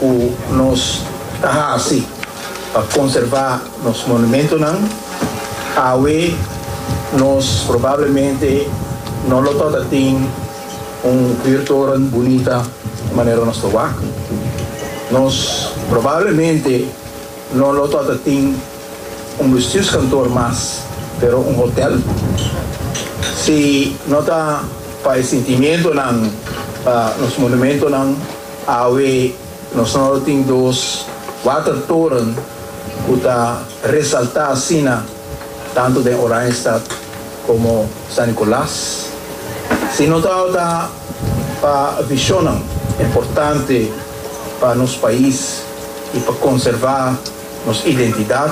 Cu nos ta haci pa conserva nos monumentonan? Awe nos probablemente no lo ta tin un biertoren bunita manera nos ta wak. Nos probablemente no lo ta tin un bestuurskantoor mas, pero un hotel. Si no ta pa e sentimentonan pa nos monumentonan, Awe nos no lo tin dos watertoren ku ta resaltá asina tantu den Oranjestad komo San Nikolas. Si no tabata ta pa vishonnan importante pa nos pais i pa konservá nos identidat,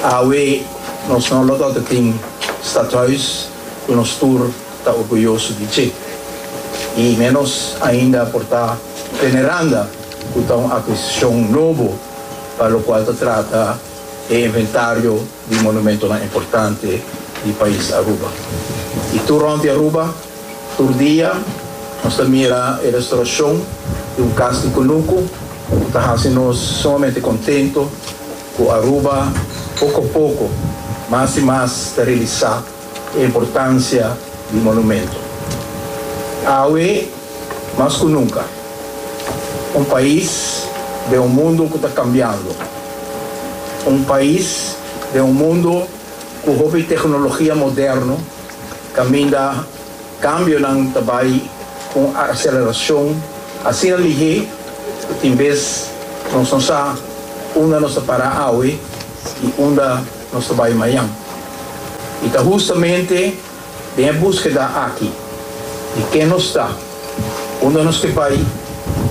awe nos no lo tabata tin Stadhuis ku nos tur. ta orguyoso di dje i ménos ainda por ta peneranda ku ta un akuisashon nobo pa lokual ta trata e inventario di monumentonan importante di pais Aruba. I tur rònt di Aruba, tur dia nos ta mira e restaurashon di un kas di kunuku ku ta hasi nos sumamente kontentu ku Aruba poko a poko, mas i mas ta realisá. e importancia di monumento. Awe mas cu nunca, un pais den un mundo cu ta cambiando, un pais den un mundo cu hopi tecnologia moderno caminda cambionan ta bay cu un aceleracion asina lihe cu tin bes nos no sa unda nos ta para awe y unda nos ta bai mañan. I ta hustamente den e buskeda aki di ken nos ta, unda nos ke bai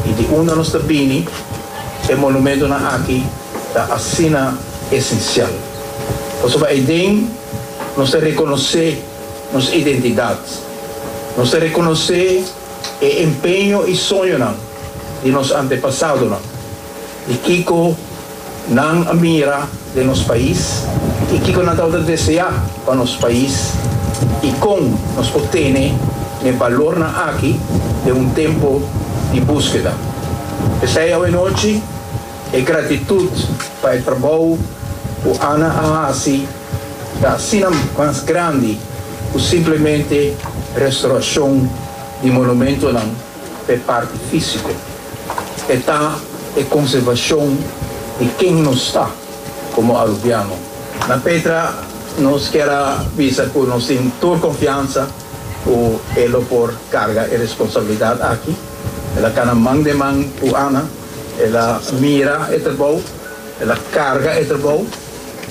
i di unda nos ta bini e monumentonan aki ta asina esensial. Pasobra eden nos ta rekonosé nos identidat, nos ta rekonosé e empeño i soñonan di nos antepasadonan. y kico nan a mira den nos pais y kico nan tabata desea pa nos pais y con nos por tene n'e balornan aki den un tempo di buskeda. P'esey awe nochi e gratitud pa e trabou cu Ana a haci ta asina mas grandi cu simplemente restauracion di monumentonan, P'e parti físiko, e ta e konservashon di ken nos ta komo arubiano. Na Petra nos kier a bisa ku nos tin tur konfiansa ku e lo por karga e responsabilidat aki. El a kana man den man ku Ana, el a mira e trabou, el a karga e trabou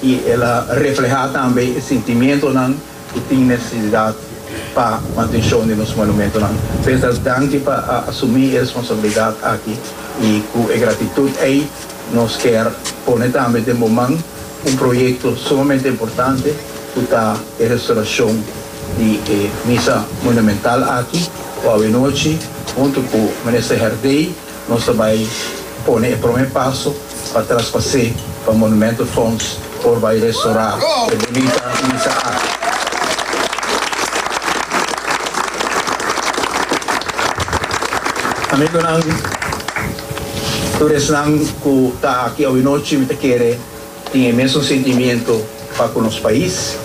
i el a reflehá tambe e sintimientonan Ku tin nesesidat pa mantenshon di nos monumentonan. Peter danki pa a asumí e responsabilidat aki i ku e gratitut ei nos ker pone tambe den bo man un proyekto sumamente importante ku ta e restorashon di e Misa Monumental aki ku awenochi huntu ku Minister Herdey Nos ta bai pone e prome paso pa traspas'é pa Monumento Fonds por bai restorá e bunita misa aki. Amigonan, tur esnan ku ta aki awe nochi mi ta kere. tin e mesun sentimiento pa ku nos pais,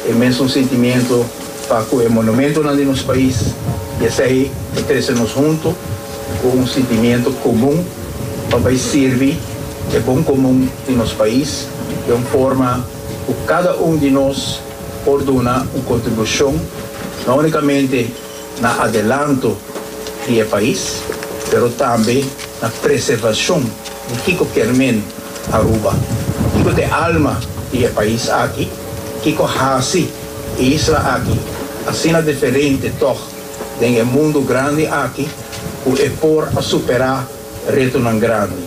e mesun sentimiento pa ku e monumentonan di nos pais, i esei e trese nos huntu ku un sentimiento komun pa bai sirbi e bon komun di nos pais den un forma ku kada un di nos por duna un kontribushon no únikamente na adelanto di e pais, pero tambe na preservacion di kico kermen Aruba, kico ta e alma di e pais aki, kico haci e isla aki asina diferente tog den e mundo grandi aki cu e por a supera retonan grandi.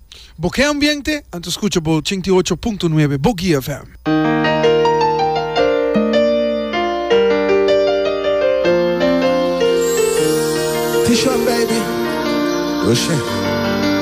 Bo ke ambiente? Anto skucha bo ochenta i ocho punto nuebe Bogia FM. T-Shot baby, Rochelle.